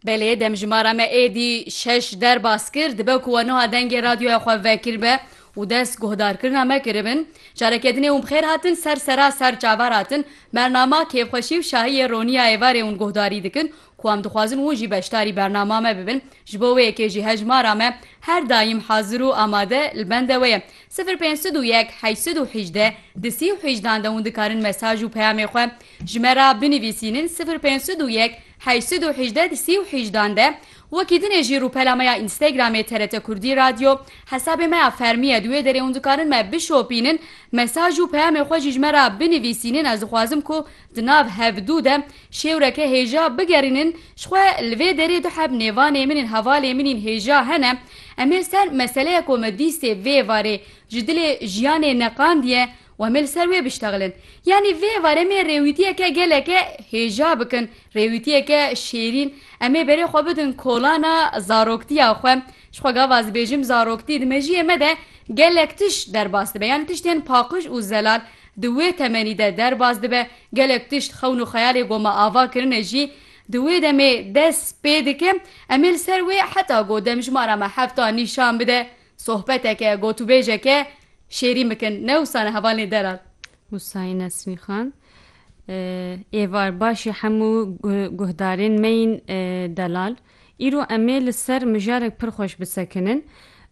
Belê demjimara me êdî şeş derbas kir, dibe ku we nuha dengê radyoya xwe vekirbe û dest guhdarkirina me kiribin. Careke dinê hûn bi xêr hatin ser sera ser çavar hatin. Bernama kêfxweşî û şahiyê roniya êvarê hûn guhdarî dikin ku em dixwazin hûn jî beşdarî bernama me bibin. Ji bo wê yekê jî hejmara me her daîm hazir û amade li bende we ye. Sifir pênc sed û yek heşt sed û hejdeh di sî û hejdan de hûn dikarin mesaj û peyamê xwe ji me re binivîsînin sifir pênc sed û yek heşt sed û hejdeh di sî û hejdan de Wekî din e jî rûpela me ya Instagramê TRT Kurdî Radio hesabê me ya fermî ye di wê derê hûn dikarin me bişopînin mesaj û peyamê xwe jî ji me re binivîsînin ez dixwazim ku Di nav hevdû de şêwreke hêja bigerînin ji xwe li vê derê du heb nêvanê min ên hevalê min ên hêja hene, em ê ser meseleya ku me dîstê vê varê ji dilê jiyanê neqandiye û em ê li ser wê biştexilin. Yanî vê varê em ê rêwîtiyeke geleke hêja bikin, rêwîtiyeke şêrîn, em ê berê xwe bidin kolana zaroktiya xwe, ji xwe gava dibêjim zaroktî di mejiyê me de gelek tişt derbas dibe, yanî tiştên paqij û zelal, Di wê temenî de derbas dibe, gelek tişt xewn û xeyalê goma ava kirine jî di wê demê dest pê dike. Em ê li ser wê heta ku demjimara me hefta nîşan bide, sohbeteke, gotûbêjeke şêrîn bikin. Ne wisa ne hevalên ê derar. Wusayî Nesmî Xan Êvar, Başî hemû guhdarên me yên delal. Îro em ê li ser mijarek pir xweş bisekinin.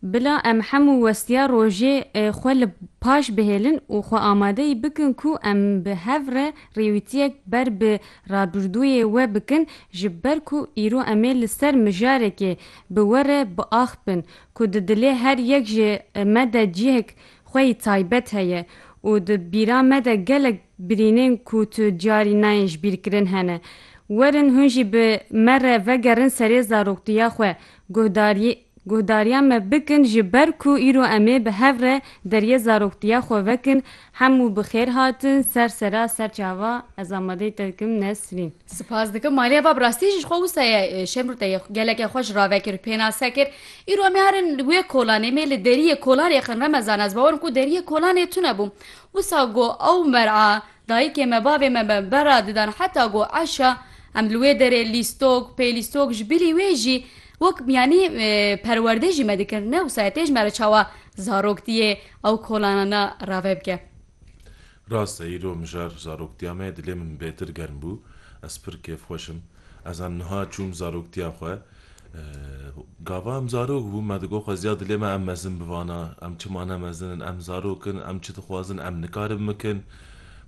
Bila em hemû westiya rojê xwe li paş bihêlin û xwe amadeyî bikin ku em bi hev re rêwîtiyek ber bi rabirdûyê we bikin ji ber ku îro em ê li ser mijarekê bi we re biaxpin ku di dilê her yek ji me de cihek xwe yî taybet heye û di bîra me de gelek Birînên ku tu diyarî nayên ji bîr kirin hene. Werin hûn jî bi me re vegerin serê zaroktiya xwe, guhdarî guhdariya me bikin ji ber ku îro em ê bi hev re deriyê zaroktiya xwe vekin Hemû bi xêr hatin ser sera ser çava Ez amadeyî te dikim Nesrîn. Sipas dikim malê va bi rastî jî ji xwe wisa ye Şemrûte yê gelekê xwe ji rave kir pênase kir Îro em ê herin wê kolanê em ê li deriyê kolanê xin remezan ez bawer im ku deriyê kolanê tune bû Wisa go ew mer'a dayikê me bavê me me berra didan heta go eşa em li wê derê lîstok, pêlîstok ji bilî wê jî wek yanî perwerdê jî me dikir ne wisa ye tê ji me re çawa zaroktiyê ew kolanana rave bike. Rast e îro mijar zaroktiya me dilê min bêtir germ bû ez pir kêfxweş im. Ez em niha çûm zaroktiya xwe. Gava em zarok bûn, me digot xwe ziya dilê me em mezin bivana. Em çima ne mezin in, em zarok in, em çi dixwazin em nikarin bikin.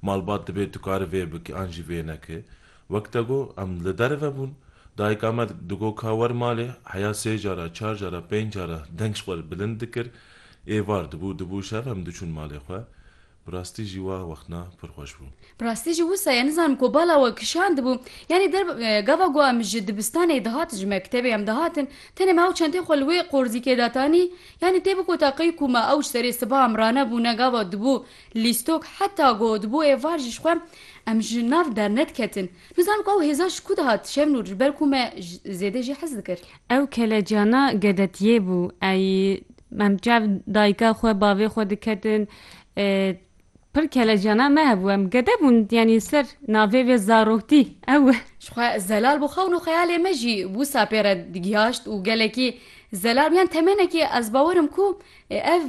Malbat dibê tu kari vê bikî an jî vê nekî. Wek te got em li derve bûn. Dayika me digot ka wer malê, heya sê cara, çar cara, pênc cara deng ji xwe re bilind dikir. Êvar dibû, dibû şev em diçûn malê xwe. Bi rastî jî wa wextna pir xweş bû. Bi rastî jî wisa ye nizanim ku bala we kişandibû. Yanî der gava ku em ji dibistanê dihatin ji mektebê em dihatin tenê me ew çentê xwe li wê qorzîkê datanî yanî tê biko taqî ku me ew ji serê sibaam ranebûne gava dibû lîstok heta ku dibû êvar jî ji xwe em ji nav dernediketin. Nizanim ku ew hêza ji ku dihat Şemnûr ji ber ku me zêde jî hez dikir. Ew kelecana gedetiyê bû. Ey em çav dayika xwe bavê xwe diketin Pir kelecana me hebû em gede bûn yanî li ser navê vê zaroktî ew e. Jixwe zelal bû xewn û xeyalê me jî wisa pê re digihaşt û gelekî zelal bû yan temenekî ez bawer im ku ev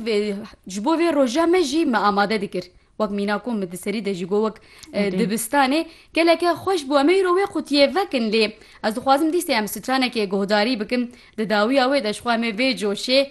ji bo vê roja me jî me amade dikir. Wek mîna ku min di serî de jî got wek dibistanê geleke xweş bû em ê îro wê qutiyê vekin lê ez dixwazim dîstê em stranekê guhdarî bikin di dawiya wê de jixwe em ê vê coşê